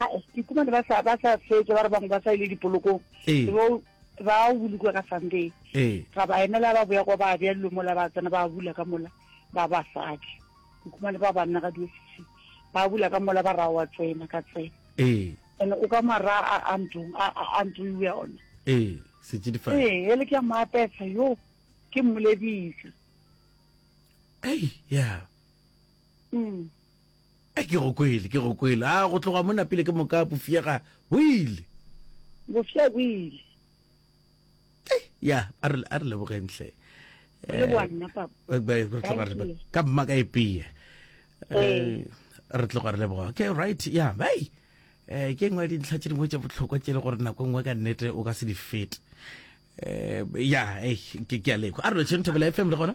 ae ke kumane ba sa ba sa fetša ba re bangwe ba sa ile dipolokong Ee. bo ba o bolokwe ka sunday ee ra ba emela ba boya kwa ba bja dilo mola ba tsena ba bula ka mola ba basadi ke kumane ba banna ga diosisi ba bula ka mola ba ra wa tsena ka tsena ee and o ka mara a a ntlong a a- a ntlo iwe ona ee setšidifadi ee ele ke a mo apesa yo ke mmolebisa ei ya mm Ai, ke go kwele, ke go kwele. A go tloga mona pele ke moka bofia ga bo ile? Bofia bo ile. Ai, ya, a re, a re lebogeng hle. Re leboga eh, nna, Papa. Ba, re tloga re, ka mma ka epea. Eh, eh. re tloga re leboga. Okay, right, ya, bai. Eh, ke engwe ya dintlha tše dingwe tše bohlokwa tše le gore nako e nngwe ka nnete o ka se di fete. Eh, ya, eh, ke, ke a lekwa. A re lotšheng Thobela FM le gona?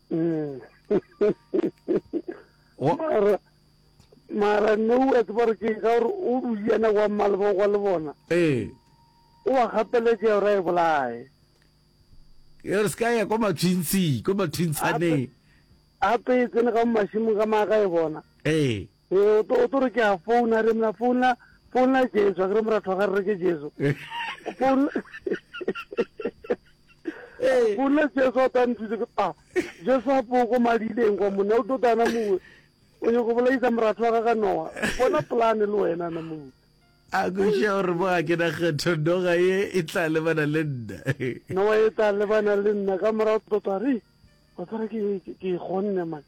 mara mara no a tseba gore ke ka gore o duyana wa mmaleba kwa le bona ee o wa gapeletša gore a e bolae e re se ka ya kwa matshwintshi kwa matshwintshaneng gape e tsene ka mo mašimong ka maaka e bona ee Ee, o tlo, o tlo re ke a founa, re mna founla, founla Jesu, a ke re moratho wa ga re re ke Jesu. Founla, Ee. founla Jesu a tla nthuse ke pa. Jesu a po ko madileng kwa monna o tlo tana mongwe. O nyoko go bolaisa moratho wa ga ga Noa. Bona polane le wena na mongwe. A go ša gore mo ga ke na kgetho noga ye e tla lebana le nna. Noa e tla lebana le nna ka morago tlo tla re, wa tsara ke ke gonne man.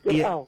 Ke Ye- ao.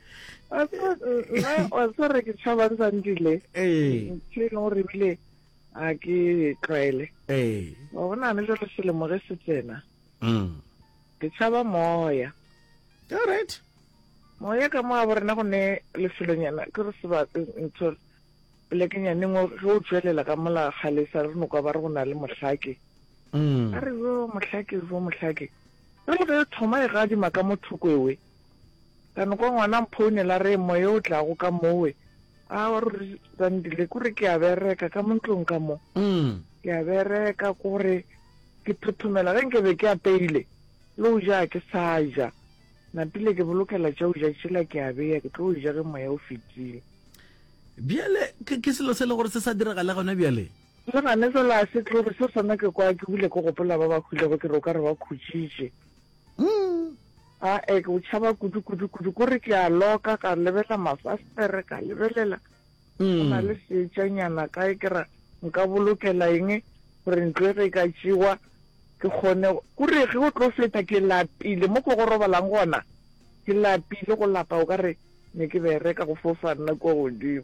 wa tseba re ke tšhabang sandile ee. ntho e leng gore ebile a ke tlwaele ee. wa bonane jalo selemo ge se tsena mm. ke tšhaba moya alright moya ka mo a bo rena go ne lefelonyana ke re seba ntho polekengyaneng ge o tswelela ka mola galesa re nokwa ba re go na le mohlake mm. a re yo mohlake yo mohlake re le ge thoma e gadima ka mo thokoewe Ka no kwa ngwana mphounela a re, Moya o tlago ka mowe. Aowa ruri Zandile, ke gore ke a bereka ka mo ntlong ka mo. Ke a bereka ke gore ke thothomela ge nke be ke apeile le go ja ga ke sa ja. Napile ke bolokela tša go ja tšela ke a beya ke tlo ja ge moya o fetile. Bjale ke ke selo se le gore se sa diragale gona bjale? Le gane fela a se tlo re se sona ke kwa ke bile ke gopola ba ba hwilego ke re o ka re ba khutšitše. Umm, aa ke go tšhaba kudu, kudu, kudu, ko re ke a loka, ka lebela mafastere, ka lebelela, go na le seetšanyana kae, ke ra nka bolokela eng, gore ntlo e ge e ka tšewa, ke kgone, ko re ge o tlo feta, ke lapile, mo ko go robalang gona, ke lapile, go lapa o ka re ne ke bereka go fofa nna kua godimo.